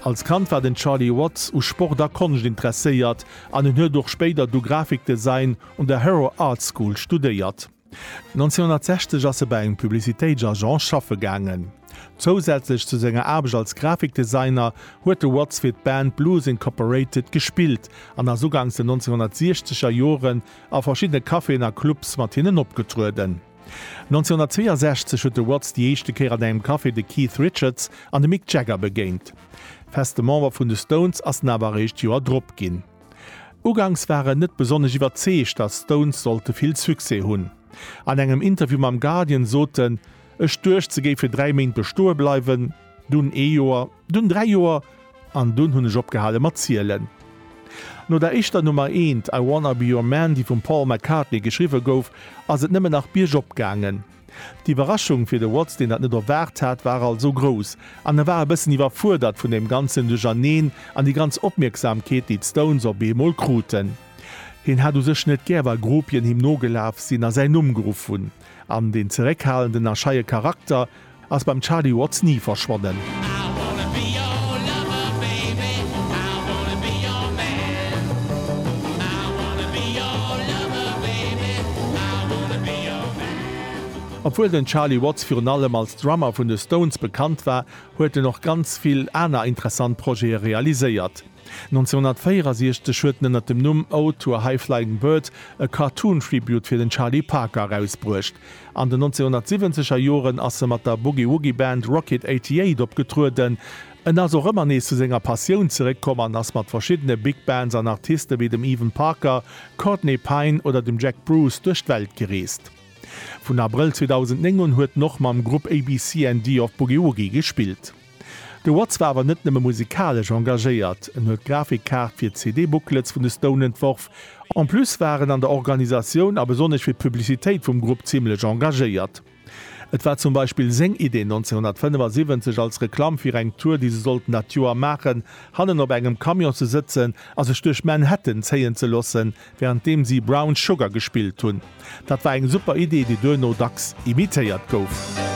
Als Kand war den Charlie Watts u Sport a Konscht interesséiert an en huet och spéider du Grafikdesign un der Harrow Art School studéiert. 1960 ass e bei engem Publicitéitsagent schaffe gaangen. Zousätzlech zu senger Aarbecht als Grafikdesigner huet de Watts fir d'Band Blues Incorporated gespillt an ass uganks den 1960er Joren a verschiddene Caféen a Clubs mat hinnen opgetrueden. 1962 huet de Watts déi éischte Kéier an engem Café de Keith Richards an de Mick Jagger begéint. Feste Member vun de Stones ass en awer eréischt d'Joer drop ginn. Uganks war en net besonnesch iwwerzeegt, datt d'Stones sollte vill Succès hunn. An engem Interview mam Guardian sot en, Ech duecht se géife dräi Méint bestoe bleiwen, dunn ee Joer. Dunn dräi Joer, an dunn hunn ech opgehale mat zielen. No der éischter Nummer eent, I Wanna Be Your Man, déi vum Paul McCartney geschriwwe gouf, ass et nëmmen nach biergop gaangen. D'Iwwerraschung fir de Watts, deen dat net erwaart hat, war also grouss an e war e bëssen iwwerfuerdert vun deem ganzen Duercherneen an déi ganz Opmierksamkeet, déi d'Stones op eemol kruten. Hien hat u sech net gär, wa Groupien him nogelaf sinn a säin Numm geruff hunn an deen zeréckhalenden a scheie Charakter, Ass beim Charlie Watts ni verschwonnen. Obwuel den Charlie Watts virun allem als Drummer vun de Stones bekannt war, huet en och ganz vill aner interessant Projete realiséiert. 1964 huet en ënner dem Numm Ode to a High-Flying Bird e Cartoon-Tribute fir den Charlie Parker erausbruecht. An den 1970 er Joren ass e mat der Boogie-Woogie-Band Rocket 88 opgetrueden. En ass och ëmmer nees zu senger Passioun zeréckkomm an ass mat verschiddene Big Bands an Artiste wéi dem Evan Parker, Courtney Pine oder dem Jack Bruce duerch d'Welt gereest. Vun Abrëll 2009 un huet en och mam Grupp ABCND of Boogie Woogie gespillt. De Watts war awer net nëmme musikalesch engagéiert, en huet d'Grafikkaart fir d'CD-Booklets vun de Stone entworf. En plus war en an der Organisatioun a besonnesch fir d'Publicitéit vum Grupp zimmlech engagéiert. Et war zum Beispill seng Idee 1975 als Reklamm fir eng Tour, déi se sollten dat Joer maachen, hannen op engem Camion ze sëtzen a sech duerch Manhattan zéien ze loossen, während deem si Brown Sugar gespillt hunn. Dat war eng super Idee, déi duerno dacks imitéiert gouf.